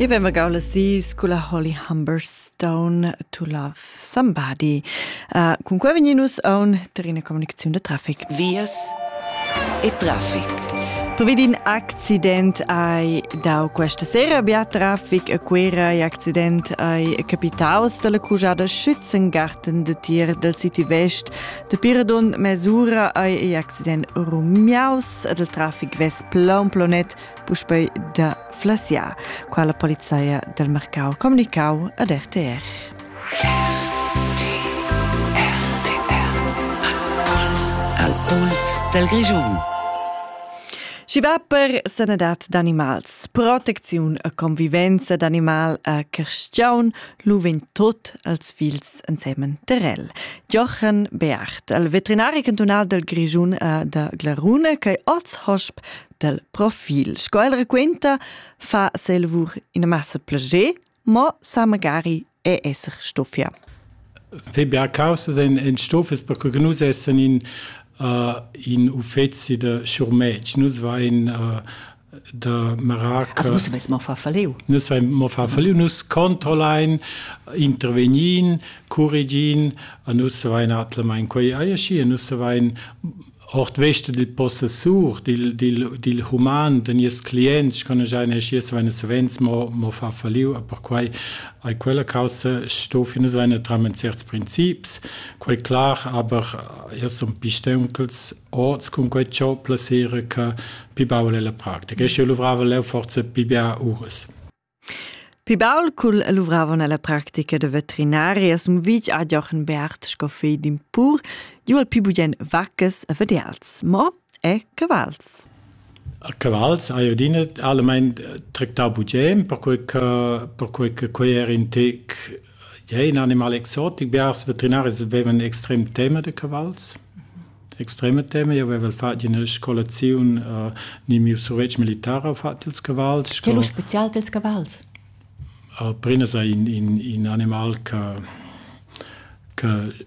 I vema gau la sis cun la Holly Humberstone to Love Somebody. Uh, cun qua vegni nus a un terrena comunicaziun da traffic. Vias e traffic. Previd in accident ai dau questa sera bia traffic a Quera e accident ai capitaus dalla cujada Schützengarten de Tier del City West Dapi radund mes'ura ei igl accident rumiaus ed il trafic vess plaun plonet puspei da flasiar, quala polizeia del mercau comunicau ad RTR. Al Puls del Grischun. Schi va per sanadad d'animals, protecziun e convivenza d'animal a Carstiaun Lu vegn tot els fils ensemen terrel. Jochen Beart, el veterinari cantunal del Grischun e de Glarune, che oz hosp del profil. Sco el raquenta, fa selvur in massa plager, mo sa magari è esser stoffia. Febercausas ein, ein stoffes perché nus essen in, uh, in uffeci de schurmetg. Nus va in uh, de merac mo fa falliu nus vein mo fa falliu nus controllein intervegnin corrigin a nus vein atlemain quei aiesci e nus vein ort veste dil possessur dil dil dil human de nies clients kann ich eine schies wenn es wenns mo mo fa falliu per quei ai quella causa sto fine seine tramen certs princips quei klar aber erst um pistenkels oz cun quei ciò plasera che pi baul è la practica. E sche luvrava leu forza pi bia uras. Pi baul cul luvravon alla practica de veterinaria sum vic a Jochen Bert Scoffé d'Impur, ju al pi bugen vaccas a vederals, mo e cavals. Cavals, a Iodine, allemein tractar bugen, per quei che per quei che quei er in tec Ja, in animal exotic. Biars veterinaris vevan extrem tema da cavals. Extrema tema. Io avevo fatg in scolaziun uh, ni miu survetsch militare ho fatg ils cavals. Sco... C'è lo special dels cavals? Uh, Prina sa in, in, in animal che che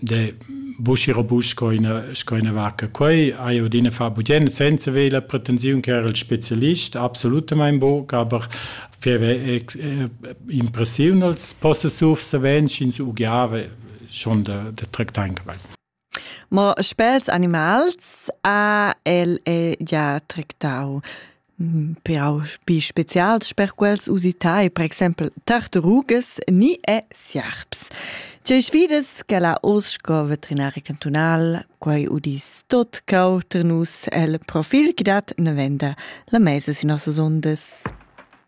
de buschi robust co ina sco ina vacca quei hai odine fa budien senza ve la pretensiun che era il specialist absolutamente bo aber feve impressiun als possessur savens ins ugiave schon de de tractain dabei Mo spels animals ha el e ja tractau però spi spezials per quels usitai, per exempel tartarugas ni e sierps. Tgei sfidas che la Osco veterinaria cantunal quei udis tot cau ter nus el profil che dat ne venda la mesa sin nossas ondas.